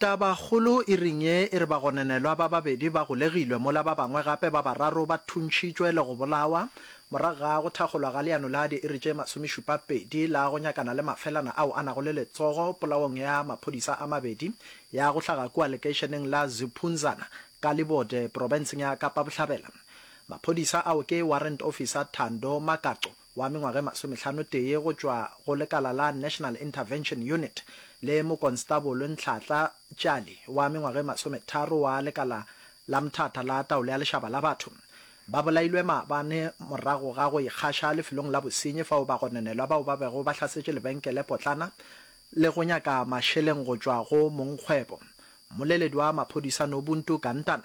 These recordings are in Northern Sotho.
Tabakgolo e ring ye e re bagononelwa ba babedi ba golegilwe mola ba bangwe gape ba bararo ba thuntšhitšwe le go bolawa morago ga go thakgolwa ga leano la diiri tše masomešupapedi la go nyakana le mafelana ao a nago le letsogo polaong ya maphodisa a mabedi ya go hlaga kua lekeišeneng la Ziphunzana ka Libode, porofenseng ya Kapa Bohlabela. Maphodisa ao ke Warrant Officer Thando Makaco, wa mengwaga e masometlhanotee go tšwa go lekala la National Intervention Unit le Mokonstabolo Ntlhatla Tšali wa mengwaga e masometharo wa lekala la Mthatha la Taolo ya Lešaba la Batho ba bolailwe maabane morago ga go ikgaša lefelong la bosenyi fao bagononelwa bao ba bego ba hlasetše lebenkele potlana le go nyaka mašeleng go tšwa go mongkgwebo. Mmoleledi wa maphodisa Nobuntu Gantana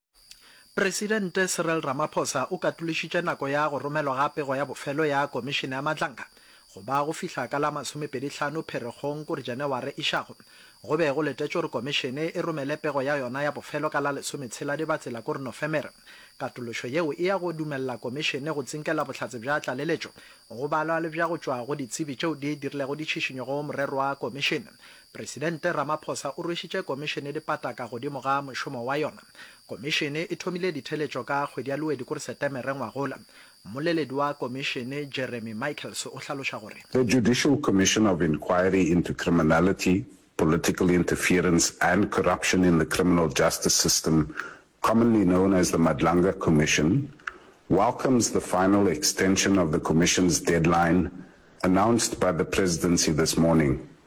Presidente Cyril Ramaphosa o katološitše nako ya go romelwa ga pego ya bofelo ya Komišene ya Matlankana go ba go fihla ka la masomepedi hlano Pherekgong kore Janeware e šago. Go be go letetšwe gore Komišene e romele pego ya yona ya bofelo ka la lesometshela Dibatsela kore Nofemere. Katološo yeo e ya go dumelela Komišene go tsinkela bohlatse bja tlaleletšo go balwa le bja go tšwa go ditsebi tšeo di dirilego ditšhišinyo go morero wa Komišene Presidente Ramaphosa o rwešitše Komišene dipata ka godimo ga mošomo wa yona. Komišene e thomile ditheletšo ka kgwedi ya Luwe dikor Setemere ngwagola. Mmoleledi wa Komišene Jeremy Michaels o hlaloša gore. The Judicial Commission of Inquiry into Criminality, Political Interference and Corruption in the Criminal Justice System, commonly known as the Madlanga Commission, welcomes the final extension of the Commission's deadline announced by the Presidency this morning.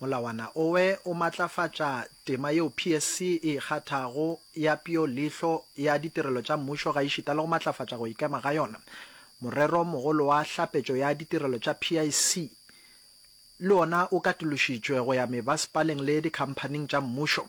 Molawana owe o matlafatša tema yeo PSC e e kgathago ya pio leihlo ya ditirelo tša mmušo gaešita le go matlafatša go ikema ga yona. Morero mogolo wa hlapetšo ya ditirelo tša PIC le ona o katološitšwe go ya mebasepaleng le dikhamphaning tša mmušo.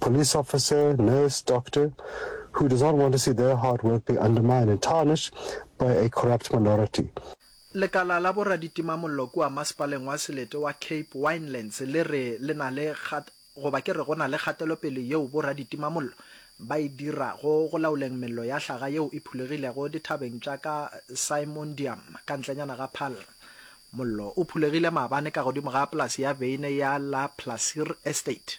police officer, nurse, doctor, who does not want to see their hard work be undermined and tarnished by a corrupt minority. Lekala la boraditimamollo kua Masepaleng wa Selete wa Cape Winelands le re le na le kgat, goba ke re go na le kgatelopele yeo boraditimamollo ba e dirago go laoleng mello ya hlaga yeo e phulegilego dithabeng tša ka Simondium ka ntlenyana ga Paarl. Mollo o phulegile maabane ka godimo ga polase ya beine ya La Plaisir Estate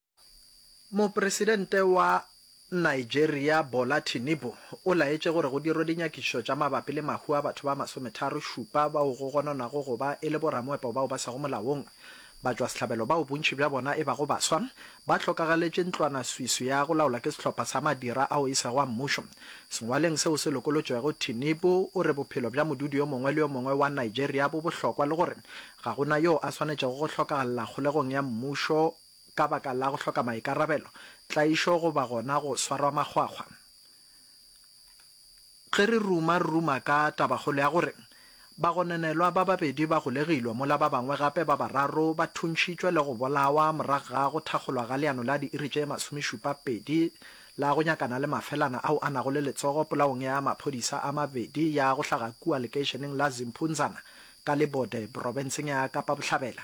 Mopresidente wa Nigeria Bola Tinubu o laetše gore go dirwe dinyakišišo tša mabapi le mahu a batho ba masometharo šupa bao go gononwago go ba e le boramoepo bao ba sego molaong ba tšwasehlabelo bao bontši bja bona e bago baswa ba hlokagaletše ntlwanaswiswi ya go laolwa ke sehlopha sa madira ao e sego a mmušo. Sengwaleng seo se lokolotšwego, Tinubu o re bophelo bja modudi yo mongwe le yo mongwe wa Nigeria bo bohlokwa le gore ga go na yoo a swanetšego go hlokagalla kgolegong ya mmušo ka baka la go hloka maikarabelo, tlaišo goba gona go swarwa makgwakgwa. Ge re ruma, re ruma ka tabakgolo ya gore bagononelwa ba babedi ba golegilwe mola ba bangwe gape ba bararo ba thuntšhitšwe le go bolawa morago ga go thakgolwa ga leano la diiri tše masomešupa pedi la go nyakana le mafelana ao a nago le letsogo polaong ya maphodisa a mabedi ya go hlaga kua lekeišeneng la Zimpunzana ka Libode porofenseng ya Kapa Bohlabela.